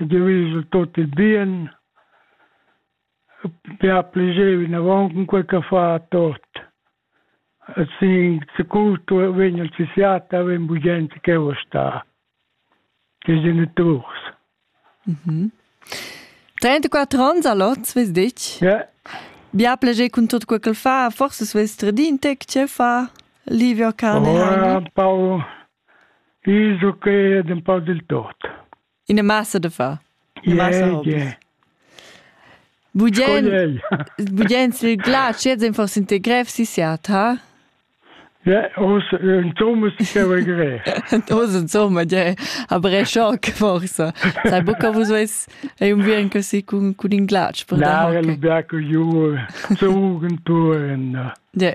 ed eu esa tot il bien. Be a pleger vinavant cun quai ch'ha fa a tot. E sin securto vegn il psichiater, vegn bugen ch'eu sta. Che geniturs. Mhm. 34 ans a lot, vez dich? Ja. Bia pleger cun tot quel ch'el fa, forse svess tradin te che fa Livio cane. Oh, un po' iso che ed un po' del tot. Ina massa da fa. Budien sil gla chieds ein fors integrev si siat, ha? Ja, os ein Thomas che va gre. Os ein Thomas, ja, aber è schock forsa. Sai buca vus veis ei un vien così cun cun in glatsch per da. Na, lu biaco ju zugen tu en. Ja.